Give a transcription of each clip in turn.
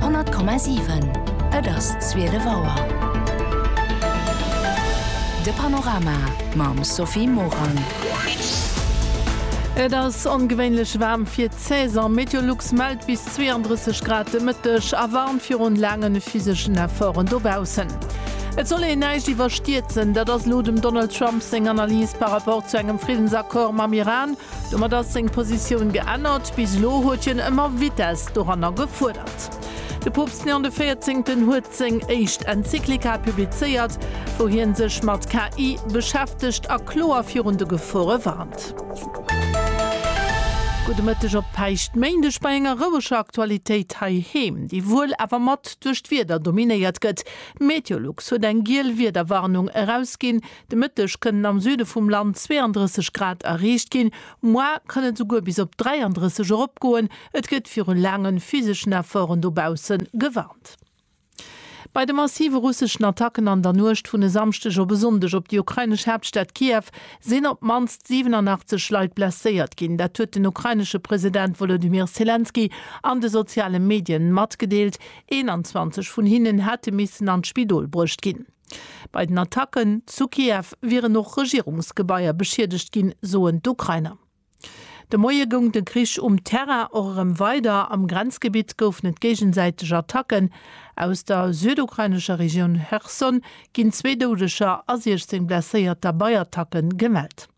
100,7 Et ass zwielef Auer. De Panorama mam Sophie Morang. Et ass ongewéinlech waarm fir d'Saison. Meteolux mellt bis 32 Grad de Mëtteg a warnt virun laangen physeschen Efforten dobaussen. Et soll een näischt iwwerstierzen, dat ass elo dem Donald Trump seng Analys par rapport zu engem Friddensaccord mam Iran. Domat ass seng Positioun geännert. Bis elo huet hien ëmmer Vitess doranner gefuerdert. De Poopst Léon de Véierzéngten huet seng éischt Enzyklika publizéiert, wou hien sech mat KI beschäftegt a kloer virun de Gefore warnt. Gudde Mëtteg op Päischtméindeg bei enger roueger Aktualitéit heiheem, déi wuel awer mat duerch d'Wieder dominéiert gëtt. Meteolux huet eng giel Wiederwarnung erausginn, De Mëtteg kënnen am Süde vum Land 32 Grad erreecht ginn, moar kann et esouguer bis op 33 eropgoen. Et gëtt viru laange physeschen Efforten dobausse gewarnt. Bei de massive russeschen Attacken an der Nuecht vun e Samschdeg op e Sonndeg op déi ukrainesch Haaptstad Kiew sinn op d'mannst 87 Leit blesséiert ginn. Dat huet den ukrainesche President Wolodymyr Selenskyj an de soziale Medien matgedeelt. 21 vun hinnen hätte missen an d'Spidol bruecht ginn. Bei den Attacken zu Kiew wieren och Regierungsgebaier beschiedegt ginn, soen d'Ukrainer. De Moie goung de Krich um Terrain och erëm weider. Am Grenzgebitt goufen et géigesäiteg Attacken. Aus der südukrainescher Regioun Cherson ginn zwee Doudeger a 16 Blesséierter bei Attacke gemellt.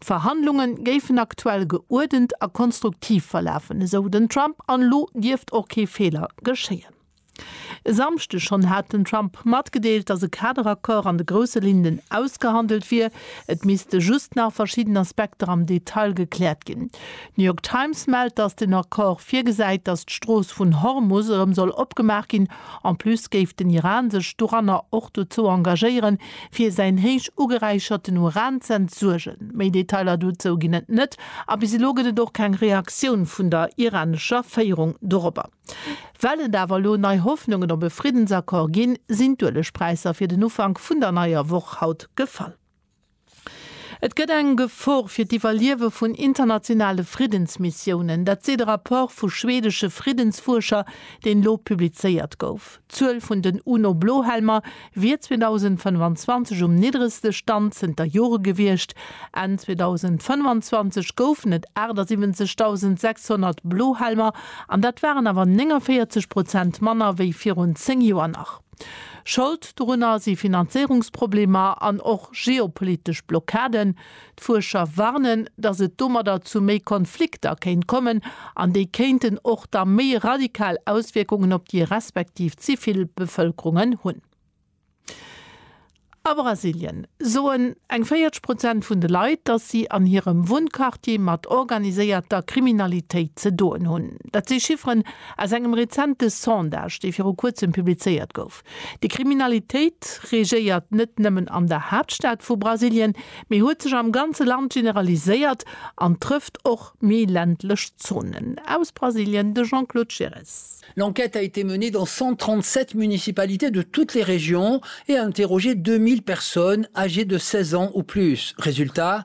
D'Verhandlunge géifen aktuell geuerdent a konstruktiv verlafen, esou den Trump, an elo dierft och kee Feeler geschéien. E Samschdeg schonn hat den Trump matgedeelt, datt e Kaderaccord an de grousse Linnen ausgehandelt wier, et misste just nach verschidden Aspekter am Detail gekläert ginn. D'New York Times mellt, datt den Accord virgesäit, datt d'Strooss vun Hormus erëm soll opgemaach ginn. En plus géif den Iran sech doranner och dozou engagéieren, fir säin héich ugeräicherten Uran z'entsuergen. Méi Detailer dozou ginn et net a bis elo gëtt et och keng Reaktioun vun der iranescher Féierung dorobber. Well et awer elo nei Hoffnungen op e Friddensaccord ginn, sinn d'Uelegpräisser fir den Ufank vun der neier Woch haut gefall. Et gëtt eng Gefor fir d'Iwwerliewe vun internationale Friddensmissiounen. Dat seet e Rapport vu schwedesche Friddensfuerscher, deen elo publizéiert gouf. D'Zuel vun den UNO-Blohelmer wier 2025 um niddregste Stand zënter Jore gewiescht. Enn 2025 goufen et 78.600 Blohelmer an dat waren awer 49 Prozent manner wéi virun 10 Joer nach. Schold dorunner si Finanzéierungsproblemer an och geopolitesch Blockaden. D'Fuerscher warnen, datt et domadder zu méi Konflikter kéint kommen, an déi kéinten och da méi radikal Auswierkungen op déi respektiv Zivilbevëlkerungen hunn. A Brasilien soen eng 40 Prozent vun de Leit, datt si an hirem Wunnquartier mat organiséierter Kriminalitéit ze doen hunn. Dat si Chifferen aus engem rezente Sondage, dee viru kuerzem publizéiert gouf. Déi Kriminalitéit regéiert net nëmmen an der Haaptstad vu Brasilien, mee huet sech am ganze Land generaliséiert an trëfft och méi ländlech Zonen. Aus Brasilien de Jean-Claude Giresse. L'enquête a été menée dans 137 municipalités de toutes les régions et a interrogé 2.000 personnes âgées de 16 ans ou plus. Résultat,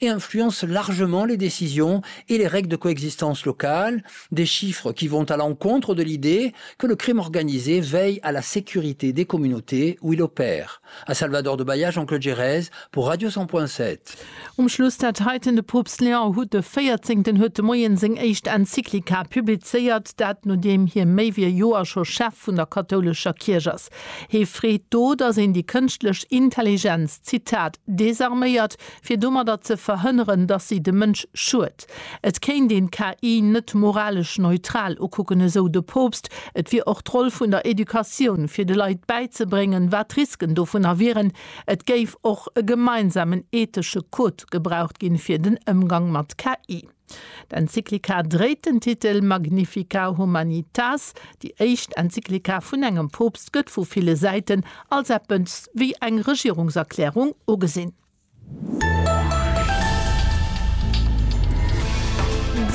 et influence largement les décisions et les règles de coexistence locales, des chiffres qui vont à l'encontre de l'idée que le crime organisé veille à la sécurité des communautés où il opère, a Salvador de Bahia, Jean-Claude Gerez pour Radio 100.7. Um Schluss dat heiten, De Poopst Léon huet de Véierzéngten huet de Moien seng éischt Enzyklika publizéiert, dat nodeem hie méi wéi e Joer scho Chef vun der kathoulescher Kierch ass. Hie freet do, datt een déi kënschtlech Intelligenz, Zitat, désarméiert, fir domadder ze verhënneren, dass si dem Mënsch schuet. Et kéint een d'KI net moralesch neutral ukucken, esou de Poopst. Et wier och d'Roll vun der Educatioun, fir de Leit bäizebréngen, wat d'Risken dovunner wieren. Et géif och e gemeinsamen ethesche Code gebraucht ginn, fir den Ëmgang mat KI. D'Enzyklika dréit den Titel Magnifica Humanitas. Déi éischt Enzyklika vun engem Poopst gëtt vu ville Säiten als eppes wéi eng Regierungserklärung ugesinn.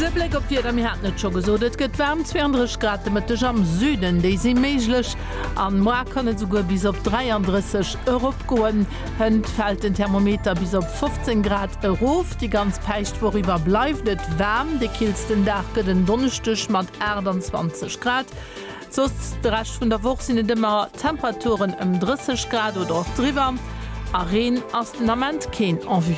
E Bléck op d'Wieder, Mir haten et scho gesot, et gëtt waarm, 32 Grad de Mëtteg am Süden, déi si méiglech an moar kann et esouguer bis op 33 eropgoen. Hënt fält den Thermometer bis op 15 Grad erof. Déi ganz Päischtwoch iwwer bleift et waarm, de killsten Dag gëtt en Donneschdeg mat 28 Grad. Soss de Rescht vun der Woch sinn et ëmmer Temperaturen ëm 30 Grad oder och driwwer a Reen ass den Ament keen en vue.